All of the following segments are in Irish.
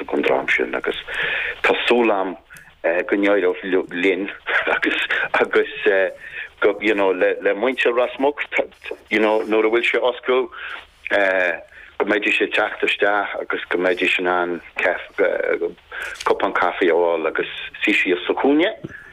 don dream sin agus tá súil agam go n-éireoidh linn agus agus you know le muintir Ros Muc you know nuair a bhfuil sé oscailte go mbeidís ag teacht isteach agus go mbeidís in ann cupán caife a fháil agus suí síos sa chúinne.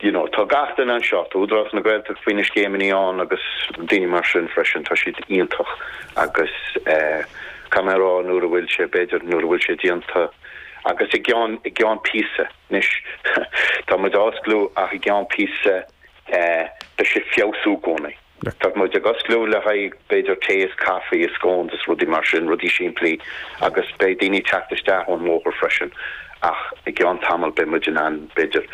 you know tá gach duine anseo, tá Údarás na Gaeltachta faoi na scéimeanna ann agus daoine mar sin freisin, tá siad iontach agus eh caithfidh mé a rá nuair a bhfuil sé, b'fhéidir nuair a bhfuil sé déanta agus i gceann, i gceann píosa, anois tá muid á osclú ach i gceann píosa eh beidh sé ag feabhsú i gcónaí. le. Tá muid ag osclú le haghaidh b'fhéidir tae is caife is scones is rudaí mar sin, rudaí simplí agus beidh daoine ag teacht isteach ón mbóthar freisin ach i gceann tamall beidh muid in ann b'fhéidir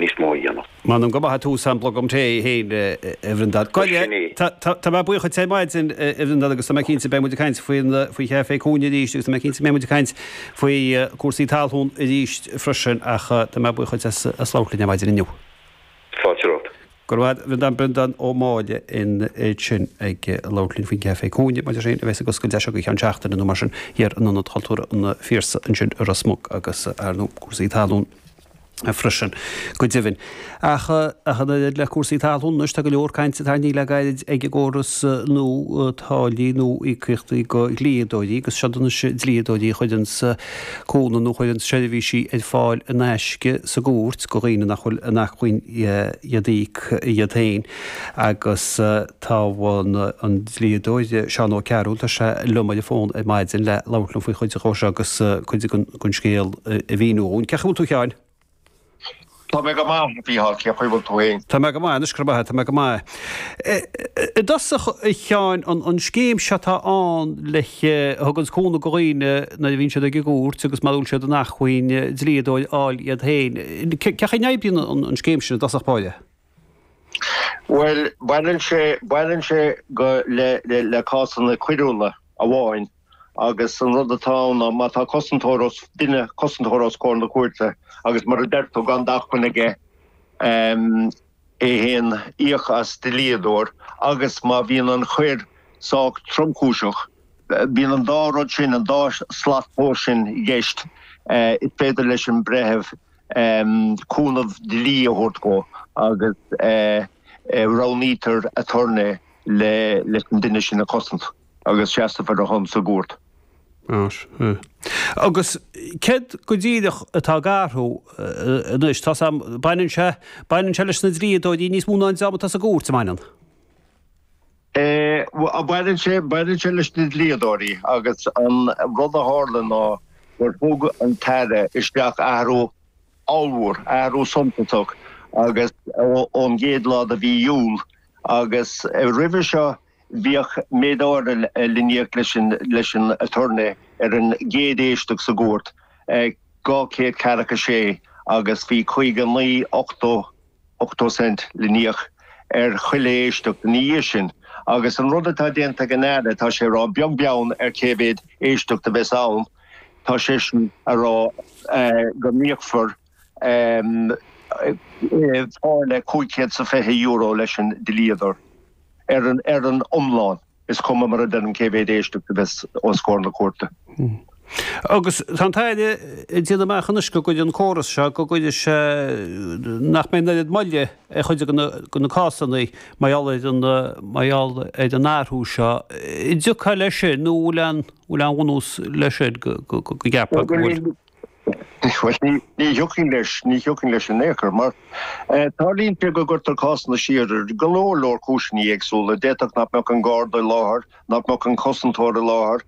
níos mó a dhéanamh. M'anam go maith é tús an bhlogam tae fhéin a Bhreandan. Go sin é. Tá mé buíoch díot ar maidin a Bhreandan agus tá mé cinnte go mbeidh muid ag caint faoi Chafé Cúinne arís agus tá mé cinnte go mbeidh muid ag caint faoi cúrsaí talún arís freisin ach tá mé buíoch díot as labhairt linn ar maidin inniu. tráchtaireacht. Go raibh maith a't. Breandán Ó Máille é sin ag labhairt linn faoin gCafé Cúinne maidir féin a bhéas ag oscailt deis acu go ceann seachtaine nó mar sin thiar in Ionad Chultúrtha an Phiarsaigh ansin i Ros Muc agus ar ndú cúrsaí talún freisin go deimhin. Ach ach an oiread le cúrsaí talún anois tá go leor cainte tarraingthe le gairid ag an gcóras nua táillí nó íocaíochtaí go dhlíodóirí agus seod iad anois dlíodóirí a chuireanns cúnamh nó a chuireann seirbhísí ar fáil in aisce sa gcúirt go dhaoine nach bhfuil in acmhainn iad íoc iad féin agus tá an dlíodóir Seán Ó Cearúil, tá sé liom ar an bhfón ar maidin le labhairt liom faoi chuid dhó seo agus cuid den scéal a mhíniú dhúinn. Cén chaoi a bhfuil tú a Sheáin? Tá mé go maith, a Mhícheáil, cé chaoi bhfuil tú fhéin? Tá mé go maith anois, go raibh maith a't, tá mé go maith. I dtosach, a Sheáin, an scéim seo atá ann le, a thuganns cúnamh do dhaoine nuair a bhíonn siad ag an gcúirt agus mara bhfuil siad in acmhainn dlíodóir a fháil iad féin. Cé chaoi a n-oibríonn an scéim sin i dtosach báire? Bhuel, baineann sé, baineann sé go, le, le, le cásanna coiriúla amháin. agus an rud atá ann ná má tá cosantóir os, duine, cosantóir os comhair na cúirte agus mar a deir tú gan d'acmhainn aige é féin íoc as dlíodóir agus má bhíonn an choir sách tromchúiseach, bíonn an dá rud sin, an dá shlat tomhais sin i gceist, is féidir leis an mbreitheamh cúnamh dlí a thabhairt dhó agus roghnaítear aturnae leis an duine sin a chosaint. agus seasfar ar a shon sa gcúirt. Agus céard go díreach atá eatarthu anois? Tá's a'm, baineann sé, baineann sé leis na dlíodóirí níos mó ná an dream atá sa gcúirt, an mbaineann? Bhuel, baineann sé, baineann sé leis na dlíodóirí agus an rud a tharla ná gur thug an tAire isteach athrú ollmhór, athrú suntasach ón gcéad lá de mhí Iúil agus roimhe seo, Bhíodh méid áirithe le n-íoc leis an aturnae ar an gcéad éisteacht sa gcúirt, 200 agus a 6, agus bhí 59 ochtó, ochtó cent, le n-íoc ar chuile éisteacht ina dhiaidh sin. Agus an rud atá déanta ag an Aire, tá sé a rá beag beann ar cé mhéad éisteacht a bheas ann, tá seisean a rá go n-íocfar táille €520 leis an dlíodóir. Ar an iomlán, is cuma mar a deirim cé mhéad éisteacht a bheas os comhair na cúirte. Agus tá an tAire ag déanamh amach anois go gcuirfidh an córas seo, go gcuirfidh sé, nach mbeidh an oiread moille ar chuid de na cásanna mar gheall ar an, mar gheall ar an athrú seo. An dtiocfá leis sin nó an bhfuil aon bhunús leis sin go gceapfá go bhfuil? Bhuel, ní thiocfainn leis, ní thiocfainn leis in aon chor, mar tarlaíonn sé go gcuirtear cásanna siar ar go leor, leor cúiseanna éagsúla. D'fhéadfadh nach mbeadh an Garda i láthair, nach mbeadh an cosantóir i láthair,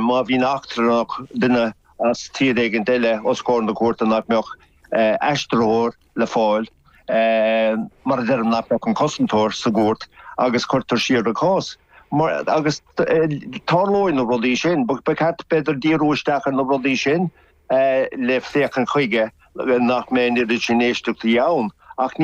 má bhíonn eachtrannach, duine as tír éigin eile os comhair na cúirte nach mbeadh aistritheoir, le fáil mura dtaispeánfadh an cosantóir sa gcúirt agus cuirtear siar an cás. Agus tarlóidh na rudaí sin. Ba cheart b'fhéidir díriú isteach ar na rudaí sin le féachaint chuige nach mbeidh an oiread sin éisteachtaí ann ach ní